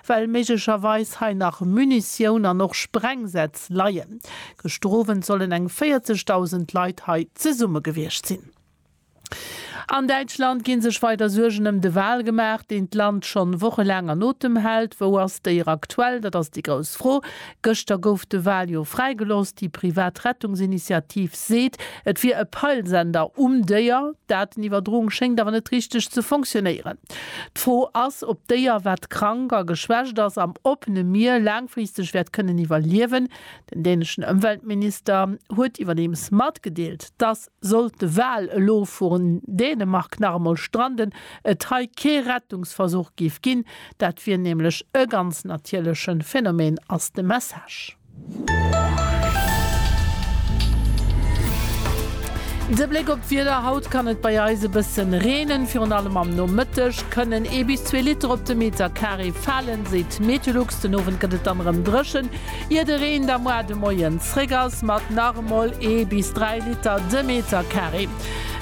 well méiglecherweis hei nach Munitioun an och Sprengsätz leien. Gëschter Owend sollen eng 40.000 Leit hei zesumme gewiescht sinn. An Däitschland gi sech weider Suergen ëm de Wal gemaach, deen d'Land schonn wochelaang an Otem hält. Wou ass déi era aktuell? Dat ass déi grouss Fro. Gëschter gouf de Wal jo fräigelooss. Déi privat Rettungsinitiativ seet, et wier e Peilsender um Déier. D'Daten-Iwwerdroung schéngt awer net richteg ze fonctionéieren. D'Fro ass, ob d'Déier, wat krank a geschwächt ass, am oppene Mier laangfristeg wäert kënnen iwwerliewen. Den däneschen Ëmweltminister huet iwwerdeems matgedeelt, dass, sollt de Wal elo vu Dänemark nach emol stranden, et hei kee Rettungsversuch géif ginn. Dat wier nämlech e ganz natierleche Phänomen, ass de Message. De Bléck op d'Wieder, Haut kann et bei eis e bëssen reenen. Virun allem am Nomëtteg kënnen ee bis zwee Liter op de Meter Carré falen, seet d'Methelux. Den Owend gëtt et dann erëm dréchen, ier de Reen da moar de Moien zréck ass, mat nach emol ee bis dräi Liter de Meter Carré.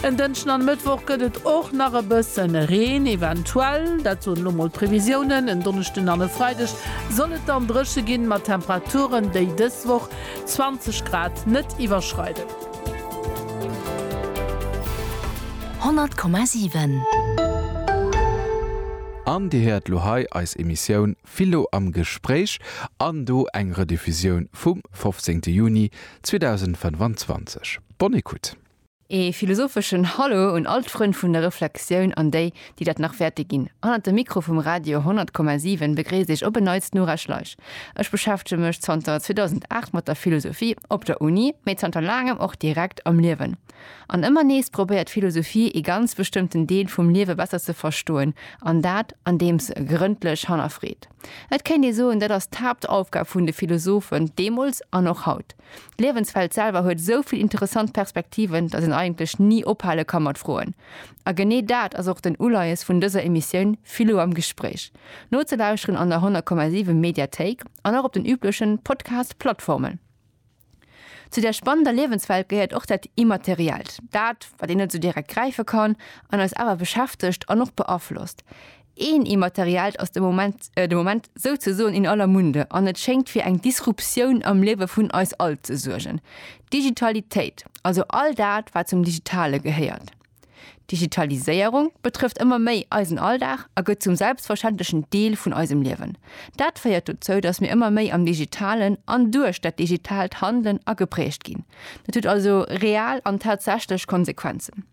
En Dënschden an e Mëttwoch gëtt et och nach e bësse Reen, eventuell, dat soen elo mol d'Previsiounen. En Donneschden an e Freideg Soll et dann dréche ginn, mat Temperaturen, déi dës Woch 20 Grad net iwwerschreiden. 100,7. An Dir héiert lo hei eis Emissioun Philo am Gespréich an do eng Rediffusioun vum 15 Juni 2025. Bonne écoute. Ee philosopheschen Hallo un all d'Frënn vun der Reflexioun an déi, déi dat nach wäerte ginn. Hannert dem Mikro vum Radio 100,7 begréisst iech op en Neits d'Nora Schleich. Ech beschäftege mech zanter 2008 mat der Philosophie, op der Uni, mee zanter laangem och direkt am Liewen. An ëmmer nees probéiert d'Philosophie ee ganz bestëmmten Deel vum Liewe besser ze verstoen, an dat andeem se e grëndlech hannerfreet. Et kéint ee soen, dat ass d'Haaptaufgab vun de Philosophen, deemools an och haut. D'Liewensfeld selwer huet esou vill interessant Perspektiven, datt een eigentlech ni ophale ka mat froen. A genee dat ass och den Uleies vun dëser Emissioun Philo am Gespréich. Nozelauschteren an der 100,7 Mediathéik an och op den üblechen Podcast-Plattformen. Zu där spannender Liewenswelt gehéiert och dat Immateriellt, dat, wat een net esou direkt gräife kann an eis awer beschäftegt an och beaflosst. Een Immateriellt ass de Moment, de Moment souzesoen in aller Munde an et schéngt fir eng Disruptioun am Liewe vun eis all ze suergen, d'Digitalitéit, also all dat, wat zum Digitale gehéiert. D'Digitaliséierung betrëfft ëmmer méi eisen Alldag a gëtt zum selbstverständlechen Deel vun eisem Liewen. Dat féiert dozou, dass mir ëmmer méi am Digitalen an duerch dat Digitaalt handelen a geprägt ginn. Dat huet also real an tatsächlech Konsequenzen.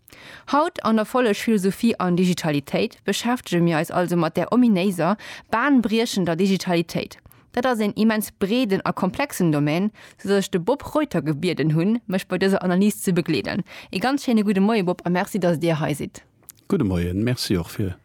Haut an der Folleg Philosophie an Digitalitéit beschäftege mir eis also mat där ominéiser, bahnbriechender Digitalitéit. Dat ass een immens breeden a komplexen Domän, sou dass ech de Bob Reuter gebieden hunn, mech bei dëser Analys ze begleeden. Ee ganz schéine gudde Moie Bob a Merci, dass Dir hei sidd. Gudde Moien, Merci och fir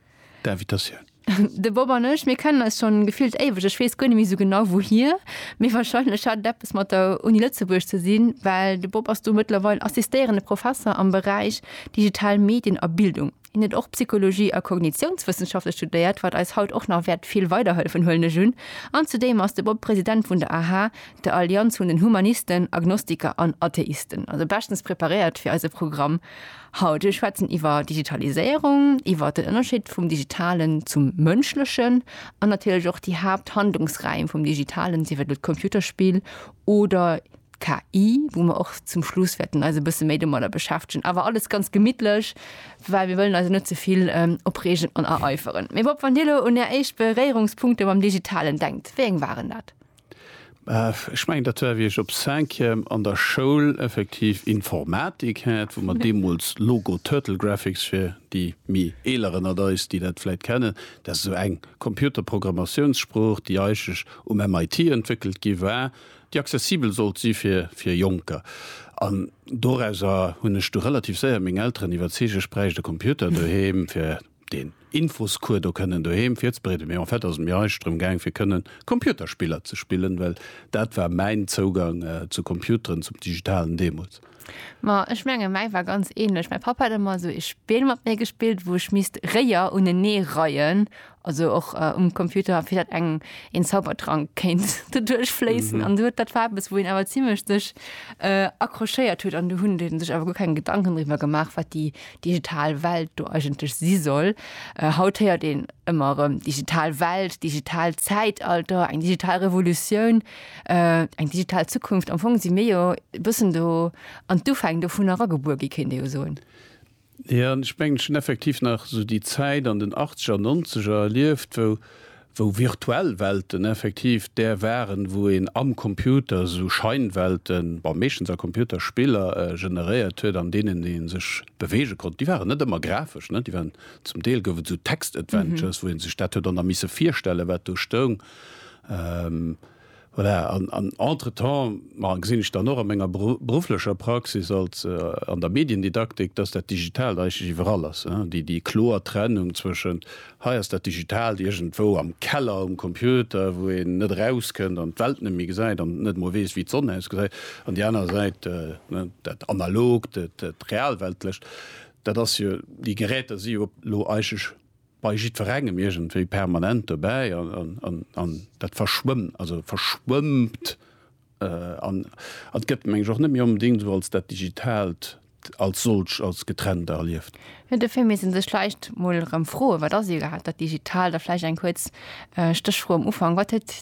d'Invitatioun. De Bob an ech, mir kennen eis scho gefillt éiweg. Ech weess guer net méi esou genau wouhir, mee warscheinlech hat et eppes mat der Uni Lëtzebuerg ze sinn, well de Bob ass do mëttlerweil assistéierende Professer am Beräich digital Medien a Bildung. Hien huet och Psychologie a Kognitiounswëssenschafte studéiert, wat eis haut och nach wäert vill weiderhëllefen, huelen ech un. An zudeem ass de Bob President vun der aha, der Allianz vun den Humanisten, Agnostiker an Atheisten. Also beschtens preparéiert fir eise Programm. Haut wëll ech schwätzen iwwer Digitaliséierung, iwwer den Ënnerscheed vum Digitalen zum Mënschlechen an natierlech och déi Haapthandlungsräim vum Digitalen, sief et elo d'Computerspill oder d'KI, wou mer och zum Schluss wäerten eis e bësse méi domadder beschäftegen. Awer alles ganz gemittlech, well mir wëllen eis elo net ze vill opreegen an ereiferen. Mee Bob, wann Dir elo un Är éischt Beréierungspunkte mam Digitalen denkt, wéi eng waren dat? Ech mengen, dat war wéi ech op Cinquième an der Schoul effektiv Informatik hat, wou mer deemools Logo Turtle Graphics, fir déi méi eeler ënnert eis, déi dat vläit kennen, dat ass esou eng Computerprogrammatiounssprooch, déi eigentlech um MIT entwéckelt gi war, déi accessibel sollt si fir fir Jonker. An dorauser hunn ech du relativ séier meng Elteren iwwerzeegt, ech bräicht e Computer doheem, fir deen Infoscours do kënnen doheem virzebreeden, mee en fait ass et mir eischt drëm gaang fir kënnen Computerspiller ze spillen, well dat war mäin Zougang zu Computeren, zum Digitalen deemools. Ma ech mengen, mäi war ganz ähnlech. Mäi Papp hat ëmmer esou ee Spill mat mir gespillt, wou ech misst Réier unenee reien, also och um Computer, fir dat eng een Zaubertrank kéint doduerch fléissen. An esou, dat war eppes, wou een awer zimmlech sech accrochéiert huet an do hunn déi sech awer guer keng Gedanken driwwer gemaach, wat déi digital Welt do eigentlech si soll. Äh, haut héiert een ëmmer erëm digital Welt, digital Zäitalter, eng digital Revolutioun, äh, eng digital Zukunft. Am Fong si mir jo e bëssen do an d'Ufäng dovun eragebuer gi, kéint ee jo soen. Jo, ech mengen, ech hunn effektiv nach esou déi Zäit an den Achtzeger, Nonzeger erlieft, wou wou virtuell Welten effektiv där waren, wou een am Computer esou Scheinwelten, bon meeschtens a Computerspiller, generéiert huet, an deenen ee sech beweege konnt. Déi waren net ëmmer grafesch, ne, déi waren, zum Deel gouf et esou Text-Adventures, wou ee sech dat huet och nach misse virstellen, wat do stoung. Voilà, an entretemps, ma gesinn ech dann och a menger berufflecher Praxis als an der Mediendidaktik, dass dat Digitalt eigentlech iwwerall ass, déi kloer Trennung zwëschent, hei ass dat Digitalt iergendwou am Keller um Computer, wou een net erauskënnt an d'Welt net méi gesäit an net emol weess, wéi d'Sonn ausgesäit, an déi aner Säit dat Analogt, dat Realweltlecht. Dat ass jo, déi Geräter si jo elo eigentlech bei jiddwerengem iergendwéi permanent dobäi an dat verschwëmmt, also verschwëmmt an et gëtt, meng ech, och net méi onbedéngt esou als dat Digitaalt als solcht, als getrennt erlieft. Jo, dofir misst ee sech vläicht mol erëm froen, Wat ass iwwerhaapt dat Digitaalt? A vläicht eng kuerz Stéchfro am Ufank, Wat huet.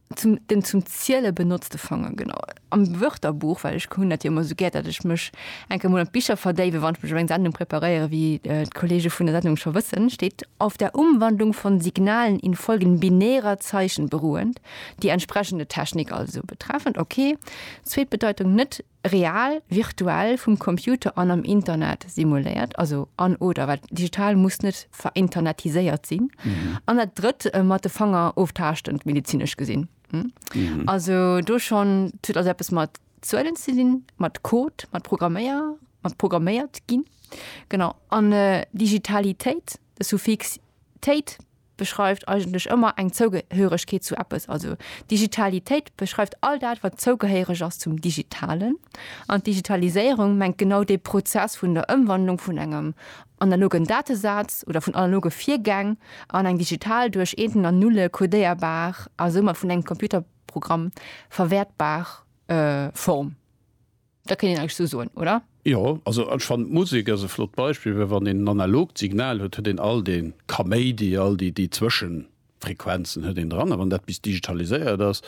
Zum, den zum Ziele benotzte Fanger, genau. Am Wörterbuch, well ech hunn dat jo ëmmer esou gär, datt ech mech eng Kéier emol an d'Bicher verdéiwen, wann ech mech op eng Sendung preparéieren, wéi d'Kollege vun der Sendung scho wëssen, steet, Auf der Umwandlung von Signalen in Folgen binärer Zeichen beruhend, die entsprechende Technik also betreffend, okay, zweet Bedeitung, net real, virtuell, vum Computer an am Internet simuléiert, also an oder, well digital muss net verinternetiséiert sinn, an dat Drëtt, mat de Fanger oftaaschtend, medezinesch gesinn. Also do schonn, et huet also eppes mat Zuelen ze dinn, mat Code, mat Programméier, mat programméiert ginn, genau. An Digitalitéit, de Suffix téit, beschreift eigentlech ëmmer eng Zougehéieregkeet zu eppes. Also Digitalitéit beschreift all dat, wat zougehéiereg ass zum Digitalen. An d'Digitaliséierung mengt genau dee Prozess vun der Ëmwandlung vun engem analogen Datesaz oder vun analoge Virgäng an eng digital, duerch Eenten an Nulle codéierbar a soumat vun engem Computerprogramm verwäertbar Form. Da kéint een eigentlech esou soen, oder? Jo, also ech fannen d'Musek ass e flott Beispill, well wann een en analogt Signal huet, huet een all dee Kaméidi, all déi déi Zwëschenfrequenzen huet een dran. A wann dat bis digitaliséiert ass,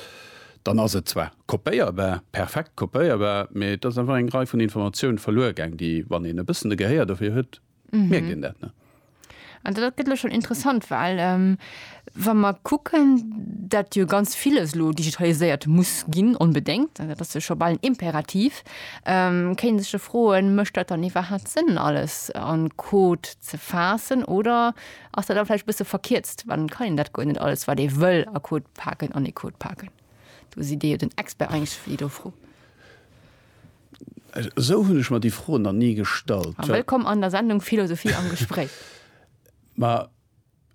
dann ass et zwar kopéierbar, perfekt kopéierbar, mee et ass einfach eng Rei vun Informatiounen verluer gaang, déi, wann een e bëssen de Gehéier dofir huet, Mierkt een dat, ne? An dat gëtt elo schonn interessant, well wa mer kucken, dat jo ganz villes elo digitaliséiert muss ginn, onbedéngt, dat ass jo scho bal en Imperativ, kéint ee sech jo froen, mécht dat dann iwwerhaapt Sënn, alles a Code ze faassen oder ass dat da vläicht e bësse verkierzt, well dann kann een dat guer net alles, wat ee wëll a Code paken, an ee Code paken. Do sidd Dir jo den Expert eigentlech fir déi do Fro. Esou hunn ech mer déi Fro nach ni gestallt. Wëllkomm an der Sendung Philosophie am Gespréich. Ma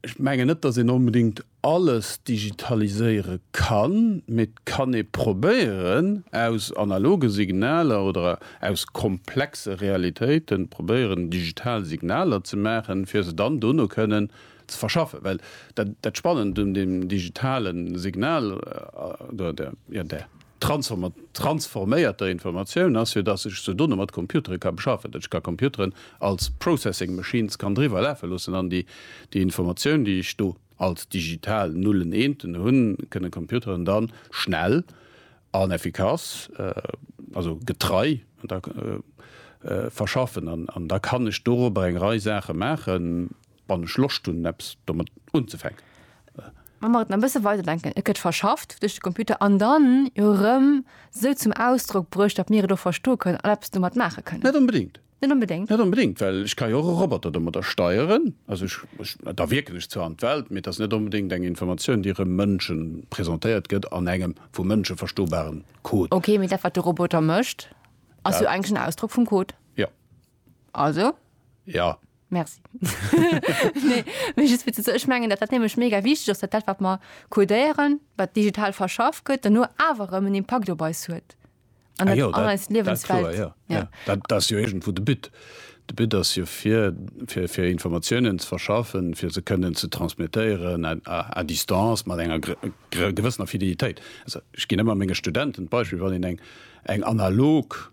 ech mengen net, datt een onbedéngt alles digitaliséiere kann, mee et kann ee probéieren, aus analoge Signaler oder aus komplexe Realitéite probéieren, digital Signaler ze maachen, fir se dann dono kënnen ze verschaffen. Well dat Spannend un deem digitale Signal oder der. Transforméierter Informatioun ass jo, dass ech sou Donne mat Computere ka beschaffen, dass ech ka Computeren als Processing Machines kann driwwer lafe loossen an déi Informatioun, déi ech do als digital Nullen, Eenten hunn, kënnen d'Computeren da schnell an effikass, also getrei, verschaffen. An da kann ech dorobber eng Rei Saache maachen. Wann ech Loscht hunn eppes domat unzefänken. Wa mer et nach e bësse weider denken, et gëtt verschafft duerch de Computer an dann jo erëm esou zum Ausdrock bruecht, datt mir et och verstoe kënnen an eppes domat maache kënnen. Net onbedéngt. Net onbedéngt? Net onbedéngt, well ech ka jo och e Roboter domadder steieren. Also ech, ech, da wierken ech zwar an d'Welt, mee et ass net onbedéngt eng Informatioun, déi erëm Mënsche presentéiert gëtt an engem vu Mënsche verstobaren Code. Okay, mee dat wat de Roboter mécht ass jo Ja. eigentlech en Ausdrock vum Code. Jo. Also? Ja. Merci. nee, mir just fir ze ech mengen, dat dat nämlech mega wichtig ass, dat dat wat mer codéieren, wat digital verschaff gëtt, dann nur awer erëm en Impakt op eis huet. An Ah dat jo, an dat, eis dat klar, Liewenswelt. ja. Ja. Ja. Dat, dat ass jo iergendwou de But. De But ass jo fir, fir, fir Informatiounen ze verschaffen, fir se kënnen ze transmettéieren à, à, à distance mat enger gr, gr, gewëssener Fidelitéit. Also ech ginn ëmmer menge Studenten d'Beispill, wann een eng, eng analog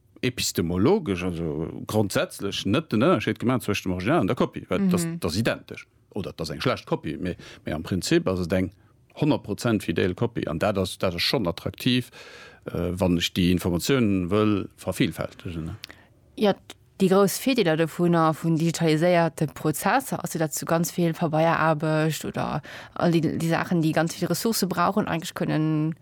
epistemologesch, also grondsätzlech, net den Ënnerscheed gemaach zwëscht dem Original an der Kopie, well dat ass identesch. Oder et ass eng schlecht Kopie, mee am Prinzip ass et eng honnert Prozent fidel Kopie. An dat ass schonn attraktiv, wann ech déi Informatiounen wëll vervillfältegen. Jo, déi grouss Virdeeler dovunner, vun digitaliséierte Prozesser, ass jo, datt se ganz vill Pabeieraarbecht oder all déi Saachen, déi ganz vill Ressourcë brauchen, eigentlech kënnen,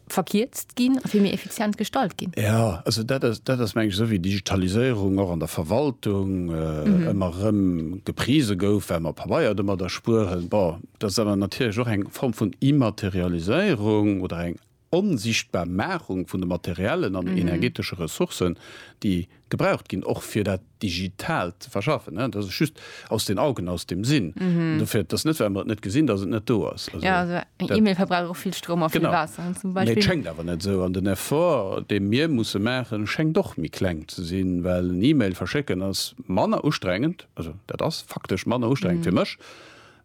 verkierzt ginn a vill méi effizient gestalt ginn. Ja, also dat ass, dat ass meng ech esou wéi Digitaliséierung och an der Verwaltung ëmmer erëm geprise gouf, well mer Pabeier domat erspueren. Bon, dat ass awer natierlech och eng Form vun Immaterialiséierung oder eng onsichtbar Machung vun de materiellen an energetesche Ressourcen, déi, gebraucht ginn, och fir dat Digitaalt ze verschaffen. Dat ass just aus den Augen, aus dem Sinn. Dofir, et ass net, well mer et net gesinn, datt et net do ass. Jo, also eng E-Mail verbraucht och vill Stroum a vill Waasser, zum Beispill. Genau. Mee et schéngt awer net esou. An den Effort, dee mir musse maachen, schéngt och méi kleng ze sinn, well en E-Mail verschécken ass manner ustrengend, also dat ass faktesch manner ustrengend fir mech,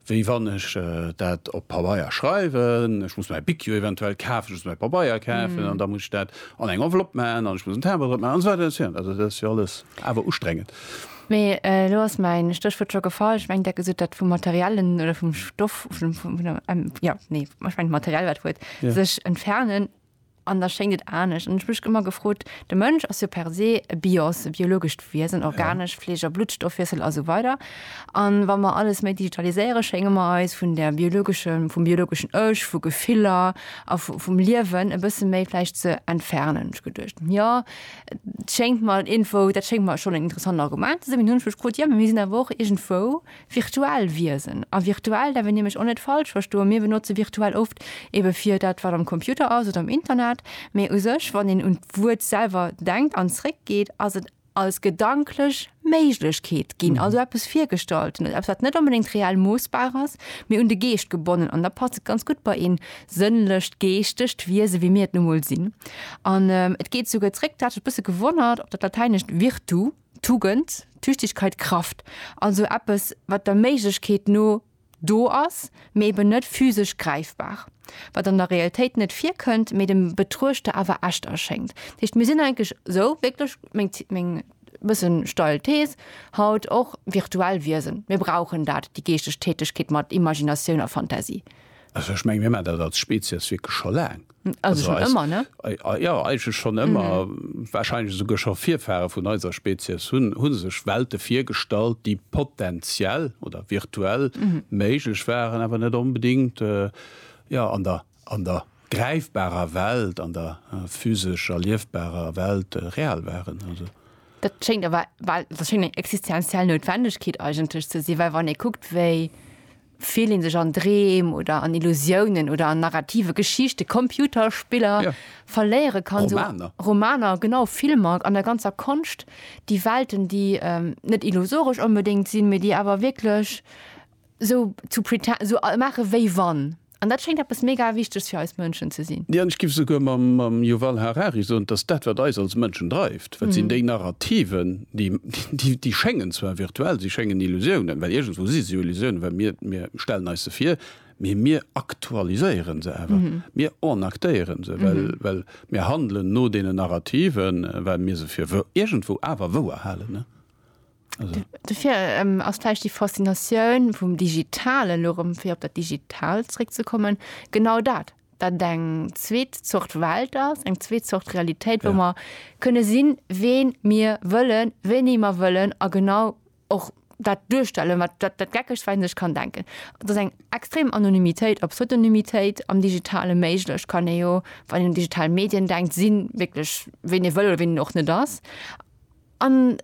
wéi wann ech dat op Pabeier schreiwen, ech muss mäi Bic jo eventuell kafen, ech muss mäi Pabeier kafen an da muss ech dat an eng Enveloppe maachen an ech muss en Timbre drop maachen an esou weider an esou fort. Also dat ass jo alles awer ustrengend. Mee elo ass mäin Stéchwuert scho gefall, ech mengen, Dir hat gesot, dat vum Materiellen oder vum Stoff, vun der, jo, nee, ech mengen d'Materiell war d'Wuert, sech entfernen. An da schéngt et anescht. An ech hu mech ëmmer gefrot, de Mënsch ass jo per se e Bios, e biologescht Wiesen, organesch, Fleesch a Bluttstoffwiessel a sou weider. An wa mer alles méi digitaliséiere schénge mer eis vun der biologeschen, vum biologeschen Ech, vu Gefiller a vum Liewen e bësse méi vläicht ze entfernen. Hu mech geduecht, jo, et schéngt mer iergendwou, dat schéngt mer schonn en interessant Argument ze sinn. Mee dunn hu mech gefrot, jo, mee mir sinn awer och iergendwou, virtuell Wiesen a virtuell därf een nämlech och net falsch verstoen, mir benotze virtuell oft ebe fir dat, wat am Computer ass oder am Internet, mä u sech, wann een un d'Wuert selwer denkt an zréckgeet, ass et als gedanklech Méiglechkeet ginn, also eppes Virgestallten, eppes, wat net onbedéngt reell moossbar ass, mä un de Geescht gebonnen. An da passt et ganz gutt bei ee sënnlecht, geeschtegt Wiese wéi mir et nu mol sinn. An et geet souguer zréck, dat huet mech e bësse gewonnert, op dat Latäinescht virtu. Tugend, Tüchtigkeit, Kraft, also eppes, wat der Méiglechkeet no do ass, mee eben net physesch gräifbar, wat an der Realitéit net virkënnt, mee dem Betruechter awer echt erschéngt. Dat heescht, mir sinn eigentlech esou wierklech, meng, meng e bëssen steil Thees haut, och virtuell Wiesen. Mir brauchen dat, déi geeschteg Tätigkeet mat Imaginatioun a Fantasie. Also ech meng mir man dat als Spezies wierklech scho laang. Also schon eis, ëmmer, ne? Jo, eigentlech schon ëmmer. Mhm. Wahrscheinlech esouguer scho Virfahre vun eiser Spezies hunn hu sech Welte virgestallt, déi potenziell oder virtuell méiglech waren, awer net onbedéngt, jo, an der, an der gräifbarer Welt, an der physesch erliefbarer Welt real waren. Also. Dat schéngt awer, well dat schéngt eng existenziell Noutwendegkeet eigentlech ze sinn, well wann ee kuckt, wéi. Fillt een sech an Dreem oder an Illusiounen oder an narrative Geschichte, Computerspiller, verléiere kann, esou Romaner, genau, Filmer, an der ganzer Konscht, déi Welten, déi net illusoresch onbedéngt sinn, mee déi awer wierklech esou zu pretend, esou maache wéi wann. An dat schéngt eppes mega Wichtegs fir eis Mënschen ze sinn. Jo, an ech géif esouguer mam Yuval Harari soen, dass dat, wat eis als Mënschen dreift, Wat sinn déi Narrativen, déi schéngen zwar virtuell, si schéngen Illusiounen, well iergendwou si se jo Illusiounen, well mir stellen eis se vir, mee mir aktualiséiere se awer, mir enactéiere se, well mir handelen no deenen Narrativen, well mir se fir iergendwou awer wouer halen. Dofir ass vläicht déi Faszinatioun vum Digitalen, elo erëm fir op dat Digitaalt zeréckzekommen, genau dat, dat eng zweet Zort Welt ass, eng zweet Zort Realitéit, wou mer kënne sinn, ween mir wëllen, wéini mer wëllen a genau och dat duerstellen, wat dat dat Geckegst, wat een sech kann denken. Et ass eng extrem Anonymitéit, a Pseudonymitéit am Digitale méiglech. Kann ee jo, wann een un digital Medien denkt, sinn wierklech, ween ee wëll oder ween een och net ass. An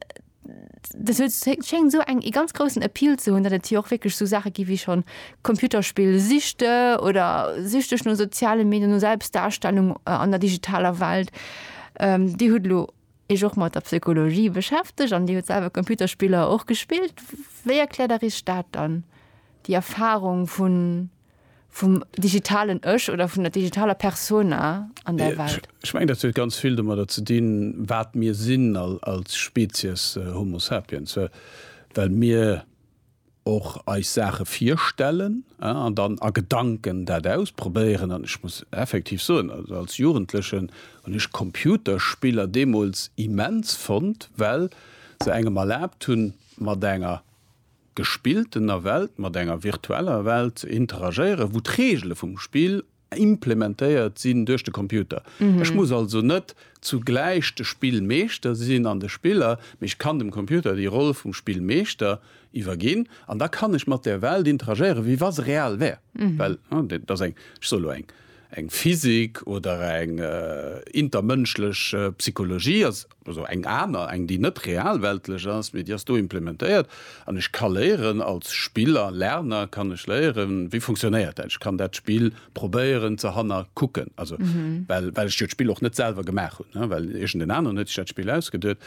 dat huet, schéngt esou eng, ee ganz groussen Appeal ze hunn, datt et jo och wierklech esou Saache gi wéi schonn Computerspill-Süchte oder süchteg no soziale Medien, no Selbstdarstellung an der digitaler Welt. Dir hutt elo Iech och mat der Psychologie beschäftegt an Dir hutt selwer Computerspiller och gespillt. Wéi erkläert Der Iech dat dann, déi Erfarung vun vum digitalen Ech oder vun der digitaler Persona an der Welt? Ech mengen, dat huet ganz vill domadder ze dinn, wat mir sinn als Spezies Homo sapiens, well mir och eis Saache virstellen an dann a Gedanken dat ausprobéieren. An ech muss effektiv soen, als Jugendlechen hunn ech Computerspiller deemools immens fonnt, well se engem erlaabt hunn, mat enger gespilltener Welt mat enger virtueller Welt ze interagéieren, wou d'Reegele vum Spill implementéiert sinn duerch de Computer. Ech muss also net zugläich de Spillmeeschter sinn an de Spiller, mee ech kann dem Computer déi Roll vum Spillmeeschter iwwerginn an da kann ech mat der Welt interagéieren, wéi wa se real wär. Well dat ass eng, ech soe lo eng, eng Physik oder eng intermënschlech Psychologie. also eng aner, eng déi net realweltlech ass, mee déi ass do implementéiert an ech ka léieren als Spiller, Lerner kann ech léieren, wéi funktionéiert dat, ech kann dat Spill probéieren ze hannerkucken, also well well ech jo d'Spill och net selwer gemaach hunn, ne, well iergend en aneren huet sech dat Spill ausgeduet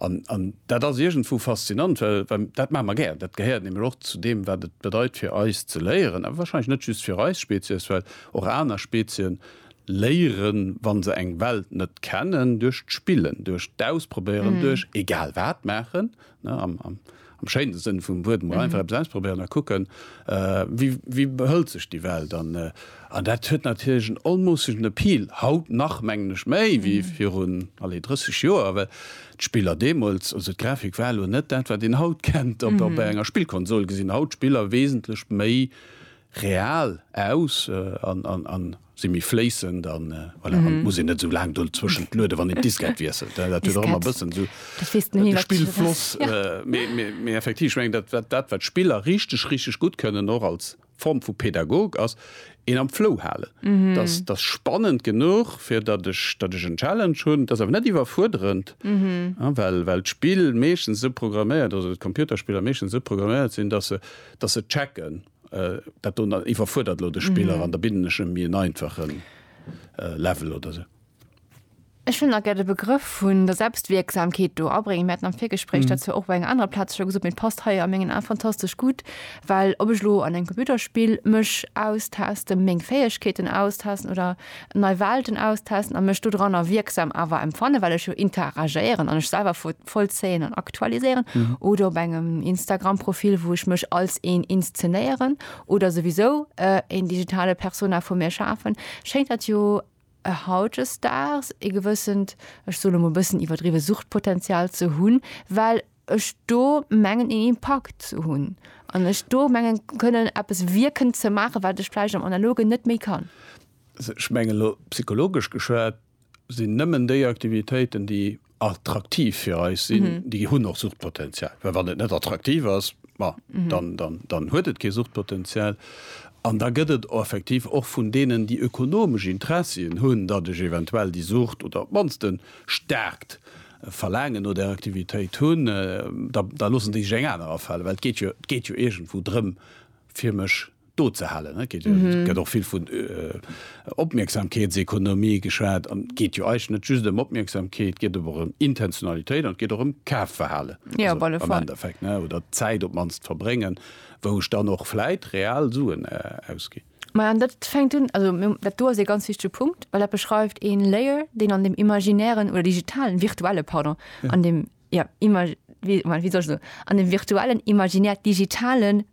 an an dat ass iergendwou faszinant, well well dat maache mer gär, dat gehéiert nämlech och zu deem wat et bedeit fir eis ze léieren, awer wahrscheinlech net just fir eis Spezies, well och aner Spezien Léieren, wann se eng Welt net kennen, duerch d'Spillen, duerch d'Ausprobéieren, duerch egal wat maachen, ne, am, am, am schéinen Sënn vum Wuert, emol einfach eppes ausprobéieren a kucken, wéi, wéi behëlt sech déi Welt. An, an dat huet natierlech en onmoossegen Appeal, haut nach, mengen ech, méi wéi virun, allez, 30 Joer, well d'Spiller deemools, also d'Grafik war elo net dat, wat een haut kennt, op, op enger Spillkonsol gesinn haut d'Spiller wesentlech méi Real aus an si méi fléissend an voilà an et muss een net esou laang dozwëschent lueden, wann een d'Diskett wiesselt. Dat huet och ëmmer e bëssen esou de Spillfloss. Mee effektiv, ech mengen, dat dat wat d'Spiller richteg richteg gutt kënnen, och als Form vu Pedagog, ass een am Flow halen. Dass dass spannend genuch, fir datt ech datt ech en Challenge hunn, et ass awer net iwwerfuerderend, well well d'Spill meeschtens esou programméiert, also d'Computerspiller meeschtens esou programméiert sinn, dass se dass se checken, Dat do iwwerfuerdert elo de Spiller an da bidden ech em méi en einfachen Level oder esou. Ech wëll nach gär de Begrëff vun der Selbstwierksamkeet do abréngen. Mir haten am Virgespréich dat zwar och op enger anerer Plaz scho gesot, mee et passt hei a mengen Ae fantastesch gutt, well ob ech elo an engem Computerspill mech austasten, meng Fäegkeeten austasten oder nei Welten austesten a mech dodranner wierksam awer empfannen, well ech jo interagéieren an ech selwer vollzéien an aktualiséieren oder op engem Instagram-Profil, wou ech mech als een inszenéieren oder souwisou een digitale Persona vu mir schafen, schéngt dat jo hautjesdaags ee gewëssent, ech soe lo mol e bëssen iwwerdriwwe Suchtpotenzial ze hunn, well. ech do mengen een Impakt ze hunn an ech do mengen kënnen eppes wierken ze maachen, wat ech vläicht am Analogen net méi kann. Also ech mengen elo psychologesch geschwat sinn nëmmen déi Aktivitéiten, déi attraktiv fir eis sinn, déi hunn och Suchtpotenzial, well wann et net attraktiv ass, ma dann dann huet et kee Suchtpotenzial. An da gëtt et effektiv och vun deenen, déi ökonomesch Interessien hunn, datt ech eventuell déi Sucht oder op d'mannst en staarkt e Verlaangen no där Aktivitéit hunn, da loossen déi sech eng aner afalen, well et geet jo iergendwou drëm, fir mech do ze halen. Et gëtt och vill vun Opmierksamkeetsekonomie geschwat. An et geet jo eigentlech net just ëm Opmierksamkeet, et geet awer och ëm Intentionalitéit an et geet och ëm Kafverhalen am Endeffekt, oder d'Zäit op d'mannst verbréngen, wou ech dann och vläit real Suen ausginn. Ma an dat fänkt un, also dat do ass ee ganz wichtege Punkt, well dat beschreift ee Layer, deen an dem imaginären oder digitalen, virtuelle, pardon, ja. an dem ja, immer, wie, man, wie soll so, an dem virtuellen, imaginär digitalen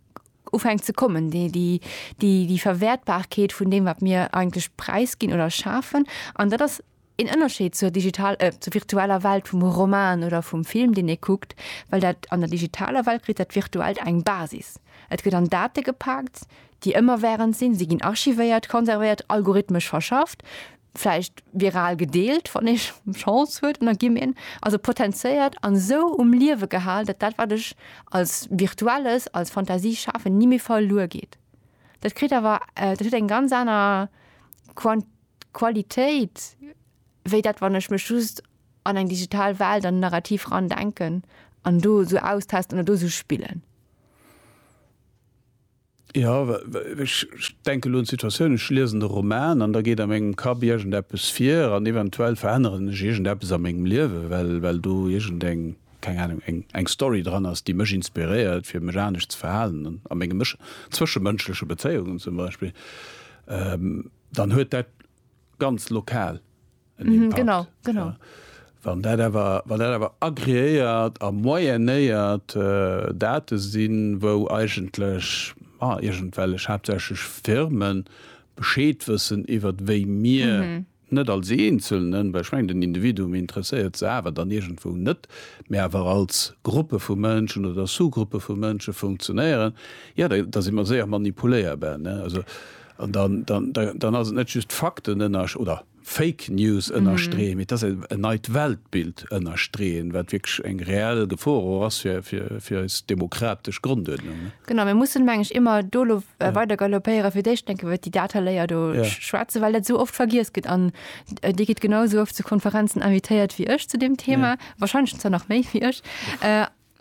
ufängt ze kommen, déi, déi, déi, déi Verwertbarkeet vun dem, wat mir eigentlech preisginn oder schafen. An dat ass Een Ënnerscheed zur digital, eh, zur virtueller Welt vum Roman oder vum Film, deen ee kuckt, well dat, an der digitaler Welt kritt dat Virtuellt eng Basis. Et gëtt an Date gepaakt, déi ëmmerwährend sinn, si ginn archivéiert, konservéiert, algorithmesch verschafft, vläicht viral gedeelt, wann ee Chance huet, an da gi mir, also potentiéiert an esou um Liewe gehal, datt dat, wat ech als Virtuelles, als Fantasie schafen, ni méi verluer geet. Dat kritt awer, dat huet eng ganz aner Quant. Qualitéit, wéi dat wann ech mech just an eng digital Welt, an en Narrativ eran denken an do esou austesten oder do esou spillen. Jo, ech denke elo un d'Situatioun, ech liesen de Roman an da geet a mengem Kapp iergendeppes vir an eventuell veränneren ech iergendeppes a mengem Liewe well well do iergendeng, keng Anung, eng eng Story dran ass, déi mech inspiréiert fir mech anescht ze verhalen a menge Mësch, zwëschemënschleche Bezéiungen zum Beispill. Dann huet dat ganz lokal en Impakt. Mhm, genau, genau. Ja. Wann dat awer, wann dat awer agreéiert a moyennéiert äh, Date sinn, wou eigentlech ma iergendwellech haaptsächlech Firmen Bescheed wëssen iwwert wéi mir, net als Eenzelnen, well ech mengen den Individuum interesséiert se awer dann iergendwou net, mä awer als Gruppe vu Mënschen oder Sous-Gruppe vu Mënsche funktionéieren, jo da da si mer séier manipuléierbar, ne? Also. An dann ass et net just Fakten ënner oder Fake News ënnerstreeën, mee et ass en neit Weltbild ënnerstreeën, wat wierklech eng reell Gefor och ass fir eis demokratesch Gronduerdnung. Genau, mir mussen, meng ech, ëmmer do elo weider galopéieren, fir d'éischt enk iwwer déi Dataléier do schwätzen, well dat esou oft vergiess gëtt. An Dir gitt genau esou oft zu Konferenzen invitéiert wéi ech zu deem Thema, wahrscheinlech zwar nach méi wéi ech.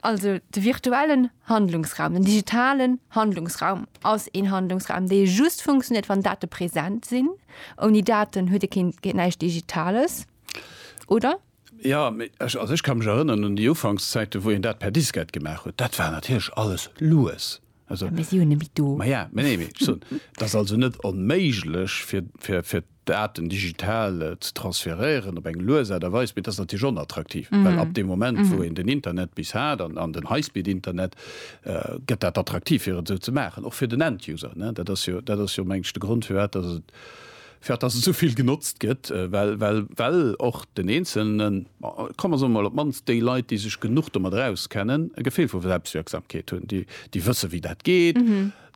Also de virtuellen Handlungsraum, den digitalen Handlungsraum ass een Handlungsraum, dee just funktionéiert, wann Date present sinn. Ouni Daten huet e keen, geet näischt Digitales, oder? Ja, mee ech, also ech ka mech erënneren un déi Ufankszäiten, wou een dat per Diskett gemaach huet. Dat war natierlech alles lues. Also, Mee si hunn e méi do. Ma ja, mä nee, mee soen, et ass also net onméiglech, fir, fir, fir d'Daten digital ze transferéieren op eng lues Aart a Weis, mee et ass natierlech onattraktiv, well ab deem Moment, wou een den Internet bis hat an, an den High-Speed-Internet, gëtt dat attraktiv, fir et esou ze maachen, och fir den End-User, ne. Dat ass jo, dat ass jo, mengen ech, de Grond, firwat dass et fir dass et esou vill genotzt gëtt, well well well och den Eenzelnen, komm mer soe mol op d'mannst déi Leit, déi sech genuch domadder auskennen, e Gefill vu Selbstwirksamkeet hunn, déi déi wësse wéi dat geet,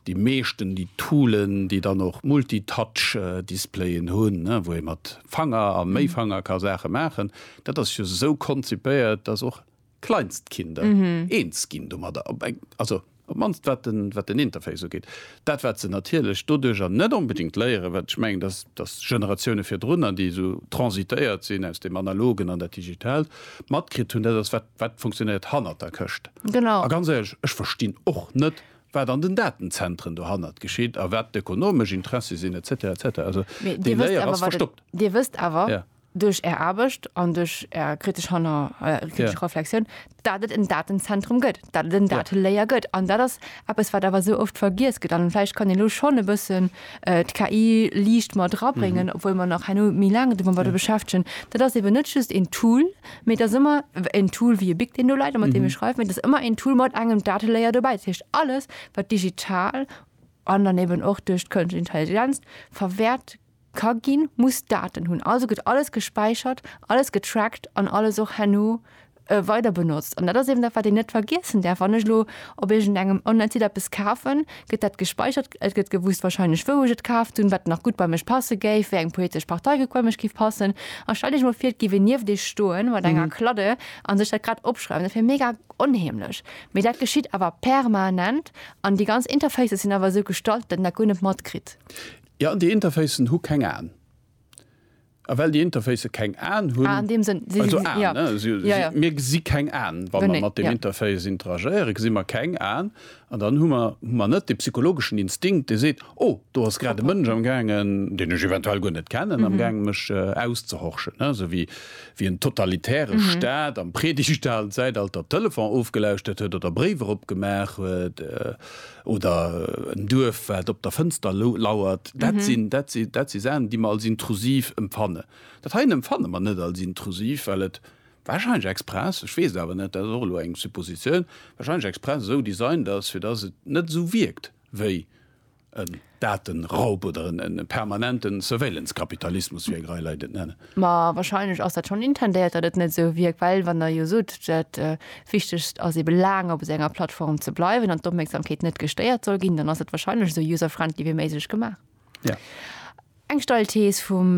déi meeschten déi Toolen, déi dann och Multitouch-Displayen hunn, wou ee mat Fanger a méi Fanger ka Saache maachen, dat ass jo esou konzipéiert, dass och. Kleinstkinder eens ginn domadder, also op d'mannst wat den Interface ugeet. Dat wat se natierlech doduerjer net onbedéngt léieren, wat ech mengen, dass d'Generatioune virdrunner, déi esou transitéiert sinn aus deem Analogen an dat Digitaalt, matkritt hunn, dat ass, wat funktionéiert hannert der Këscht. A ganz éierlech, ech verstinn och net, wat an den Datenzentren dohannert geschitt a wat d'ökonomesch Interessi sinn, et cetera, et cetera. Also déi Léier ass verstoppt. Dir wësst awer, duerch Är Aarbecht an duerch Är kritesch Hanner, kritesch Reflexioun, datt et en Datenzentrum gëtt, datt et en Datelayer gëtt. An dat ass eppes, wat awer esou oft vergiess gëtt. An vläicht kann een elo schonn e bëssen d'KI liicht mat erabréngen, obwuel mer nach herno méi laang domat wëlle beschäftegen. Dat ass eben net just een Tool, mee et ass ëmmer en Tool wéi e Bic, deen do läit a mat deem ech schreiwen, mee et ass ëmmer een Tool mat engem Datelayer dobäi. Dat heescht, alles, wat digital an dann eben och duerch d'kënschtleche Intelligenz verwäert Ka ginn, muss Daten hunn. Also gëtt alles gespäichert, alles getrackt an alles och herno weider benotzt. An dat ass eben dat, wat een net vergiessen däerf. Wann ech elo op iergend engem Online-Site eppes kafen, gëtt dat gespäichert. Et gëtt gewusst warscheinlech, wou ech et kaaft hunn, wat nach gutt bei mech passe géif, wéi eng politesch Partei gutt bei mech géif passen. A stell dech mol vir, et géif een nieft iech stoe mat enger Kladde a sech dat grad opschreiwen. Dat wier mega onheemlech. Mee dat geschitt awer permanent an déi ganz Interfaces sinn awer esou gestalt, datt een dat guer net matkritt. Jo, déi Interfacen hu keng Aen. A well déi Interfacë keng Aen hunn, also Aen, ne, mir gesi keng Aen, wa mer mat deem Interface interagéieren, gesi mer keng Aen. An dann hu mer, hu mer net dee psychologeschen Instinkt, dee seet, Oh, do ass grad e Mënsch amgaangen, deen ech eventuell guer net kennen, amgaangen, mech auszehorchen, ne, esou wéi en totalitäre Staat am Predigtszalzäitalter d'Telefon ofgelauschtert huet oder Bréiwer opgemaach huet. oder en Duerf wat op der Fënster lauert, dat sinn, dat si, dat si Saachen déi mer als intrusiv empfannen. Dat heien empfanne mer net als intrusiv, well et warscheinlech express, ech weess et awer net, dat ass och elo eng Suppositioun, warscheinlech express esou designt ass, fir datt et net esou wierkt wéi en. Datenraub oder en permanenten Surveillance-Kapitalismus, wéi eng Rei Leit et nennen. Ma wahrscheinlech ass dat schonn intendéiert, datt et net esou wierkt, well wann Der jo sot, dat Wichtegst ass ebe laang op esou enger Plattform ze bleiwen an d'Opmierksamkeet net gestéiert soll ginn, dann ass et wahrscheinlech esou user-friendly wéi méiglech gemaach. Eng steil Thees vum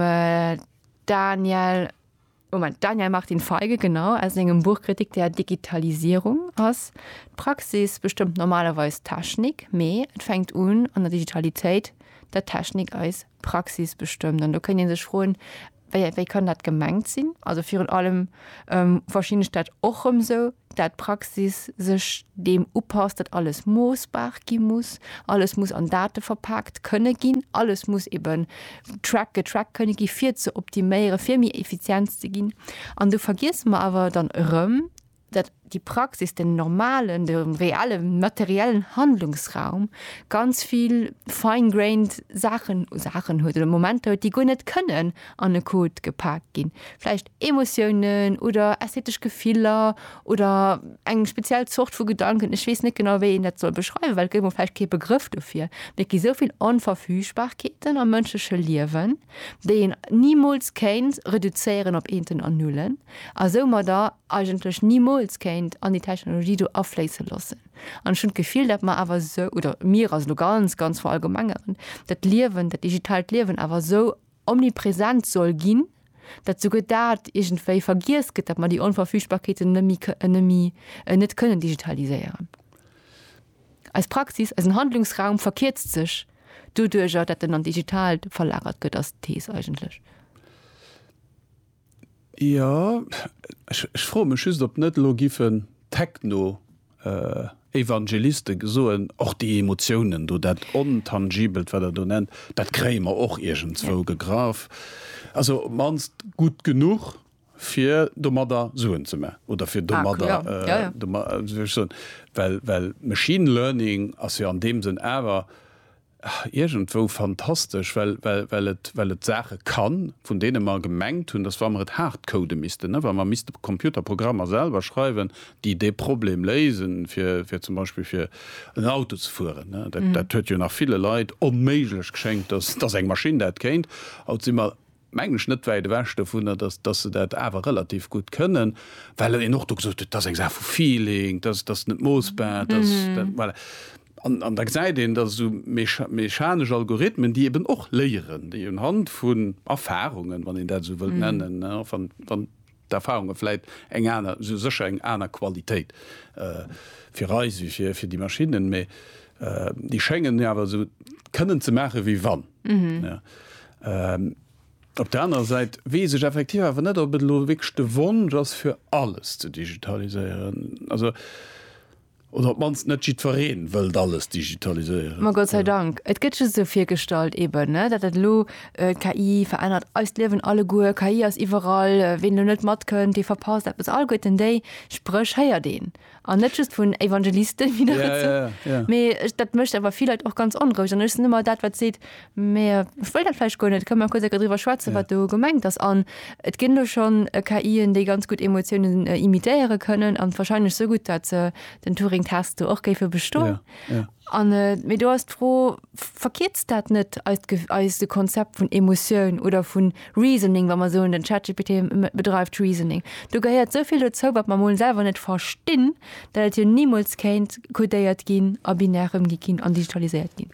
Daniel. Moment, Daniel Martin Feige, genau, aus sengem Buch Kritik der Digitalisierung ass d'Praxis bestëmmt normalerweis d'Technik, mee et fänkt un an der Digitalitéit, datt d'Technik eis Praxis bestëmmt. An do kënnt ee sech froen, wéi, wéi kann dat gemengt sinn? Also virun allem verstinn ech dat och rëm esou, dat d'Praxis sech deem upasst, datt alles moossbar gi muss, alles muss an Date verpaakt kënne ginn, alles muss eeben Track a Track kënne gi fir ze optiméiere fir méi effizient ze ginn. An do vergiesse mer awer dann erëm, datt déi Praxis den normalen, de reelle materiellen Handlungsraum ganz vill fine grained Saachen, Saachen huet oder Momenter huet, déi guer net kënnen an e Code gepak ginn. Vläicht Emotiounen oder ästhetesch Gefiller oder eng speziell Zort vu Gedanken, ech weess net genau, wéi een dat soll beschreiwen, well et gëtt elo vläicht kee Begrëff dofir, mee et gi sou vill Onverfügbarkeeten am mënschleche Liewen, déi een nimools kéint reduzéieren op Eenten an Nullen a soumadder eigentlech nimools kéint an déi Technologie do afléisse loossen. An ech hunn d'Gefill, datt mer awer esou, oder mir, also elo ganz, ganz verallgemengeren, dat Liewen, dat digitaalt Liewen awer esou omnipresent soll ginn, dat souguer dat iergendwéi vergiess gëtt, dat mer déi Onverfügbarkeeten nëmme net kënnen digitaliséieren. Eis Praxis, eisen Handlungsraum verkierzt sech doduerjer, dat en an d'Digitaalt verlagert gëtt, ass d'Thees eigentlech. Jo, ech froe mech just, ob net elo giffen d'Techno-Evangeliste soen, och déi Emotiounen do, dat Ontangibelt, wat Der do nennt, dat kréie mer och iergendzwou gegraff, also op d'mannst gutt genuch, fir domadder Suen ze maachen oder fir domadder, well machine learning ass jo an deem Sënn awer, Iergendwou fantastesch, well et Saache kann, vun deene mer gemengt hunn, datt wa mer et hardcode missten, wa mer misste Computerprogrammer selwer schreiwen, déi dee Problem léisen, fir zum Beispill fir en Auto ze fueren, dat huet jo nach ville Leit onméiglech geschéngt, datt eng Maschinn dat kéint, haut si mer mengen ech, net wäit ewech dovunner, dass, dass se dat awer relativ gutt kënnen, well een och do gesot huet, et ass eng Saach vu Feeling, dass, dass net moossbar, dass, dat, voilà. An, an da gesäit een, dass esou mecha, mechanesch Algorithmen, déi eben och léieren, déi unhand vun Erfahrungen, wann een dat esou wëllt nennen, wann, wann D'Erfahrunge vläit eng aner, esou sécher eng aner Qualitéit fir eis wéi fir fir déi Maschinnen, mä déi schéngen awer esou kënnen ze maache wéi wann. Op der anerer Säit weess ech effektiv awer net, ob et elo wierklech de Wonsch ass fir alles ze digitaliséieren. Also. Oder op d'mannst net jiddwereen wëllt alles digitaliséieren. Ma Gott sei Dank, et gëtt just esou virgestallt eben, ne, datt dat elo, d'KI verännert eist Liewen alleguer, KI ass iwwerall, ween elo net matkënnt, dee verpasst eppes. Alleguerten déi Spréch héiert een, an net just vun Evangelisten, mee dat mécht awer vill Leit och ganz onroueg. An ech sinn ëmmer dat wat seet, Mä ech wëll dat vläicht guer net. Kënne mer kuerz e Kéier driwwer schwätzen, wat do gemengt ass? An et ginn elo schonn KIen, déi ganz gutt Emotiounen imitéiere kënnen, a wahrscheinlech esou gutt, datt se den Turing-Test do och géife bestoen. An, mee do ass d'Fro, Verkierzt dat net eist Ge, eist Konzept vun Emotioun oder vun Reasoning, wa mer soen, den ChatGPT bedreift Reasoning? Do gehéiert esou vill dozou, wat mer emol selwer net verstinn, dat et jo nimools kéint codéiert ginn a binär ëmgi ginn an digitaliséiert ginn.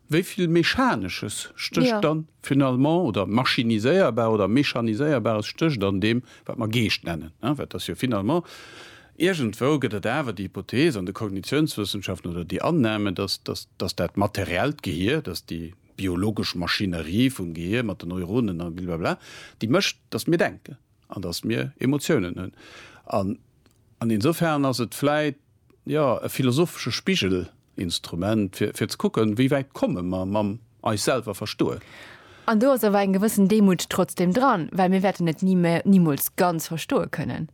Wéi vill Mechanesches stécht dann finalement, oder Maschiniséierbar oder Mechaniséierbares stécht an deem, wat mer Geescht nennen? Well et ass jo finalement, iergendwou gëtt et awer déi Hypothese an de Kognitiounswëssenschaften oder déi Annahme, dass, dass, dass dat materiellt Gehier, dass déi biologesch Maschinerie vum Gehier mat den Neuronen a blablabla, déi mécht, dass mir denken an dass mir Emotiounen hunn. An, an insofern ass et vläit jo, e philosophesche Spigelinstrument, fir, fir ze kucken, wéi wäit komme mer mam eis selwer verstoen. An do ass awer eng gewëssen Demut trotzdem dran, well mir wäerten et ni, nimools ganz verstoe kënnen.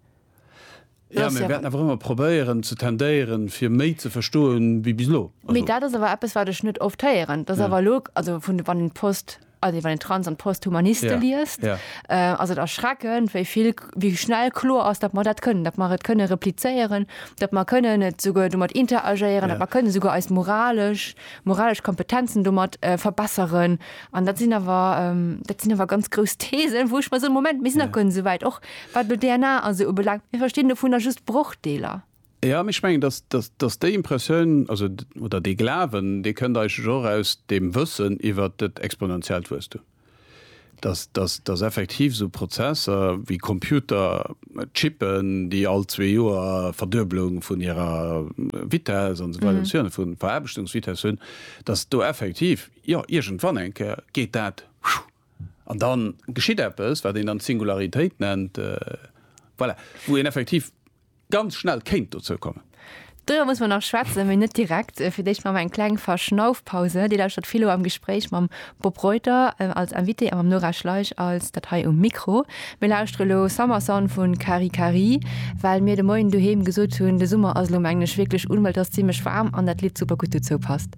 Jo, mir wäerten awer ëmmer probéieren ze tendéieren, fir méi ze verstoen, wéi bis elo. Mee dat ass awer eppes, wat ech net oft héieren, dass awer elo, also vun, wann een d'Post Also wann een Trans an Posthumaniste liest, ass et erschreckend, wéi vill, wéi schnell kloer ass, datt mer dat kënnen, datt mer et kënne replizéieren, datt mer kënnen et souguer domat interagéieren, datt mer kënne souguer eis moralesch, moralesch Kompetenzen domat verbesseren. An dat sinn awer, dat sinn awer ganz grouss Thesen, wou ech mer soen, Moment, mir sinn nach guer net esou wäit, och wat elo d'DNA a sou ubelaangt. Mir verstinn dovunner just Brochdeeler. Jo, mee ech mengen, dass, dass, dass déi Impressioun, also, oder dee Glawen, dee kënnt eigentlech och aus deem Wëssen iwwert dat exponentiellt Wuesstum, dass, dass, dass effektiv esou Prozesser wéi Computer, Chippen, déi all zwee Joer Verdueblung vun hirer Vitess an esou weider, vun hirer Veraarbechtungsvitess hunn, dass do effektiv, jo, iergendwann eng Kéier geet dat, An da geschitt eppes, wat een dann d'Singularitéit nennt, voilà, wou een effektiv ganz schnell kéint dozou kommen. Doriwwer musse mer nach schwätzen, mee net direkt. Fir d'éischt maache mer eng kleng Verschnaufpause. Dir lauschtert Philo am Gespréich mam Bob Reuter als Invité a mam Nora Schleich als dat hei um Mikro. Mir lauschtere lo Summer Son vu Kari Kari, well mir de Moien doheem gesot hunn, de Summer ass elo, mengen ech, wierklech un, well et ass zimmlech waarm an dat Lidd super gutt dozou passt.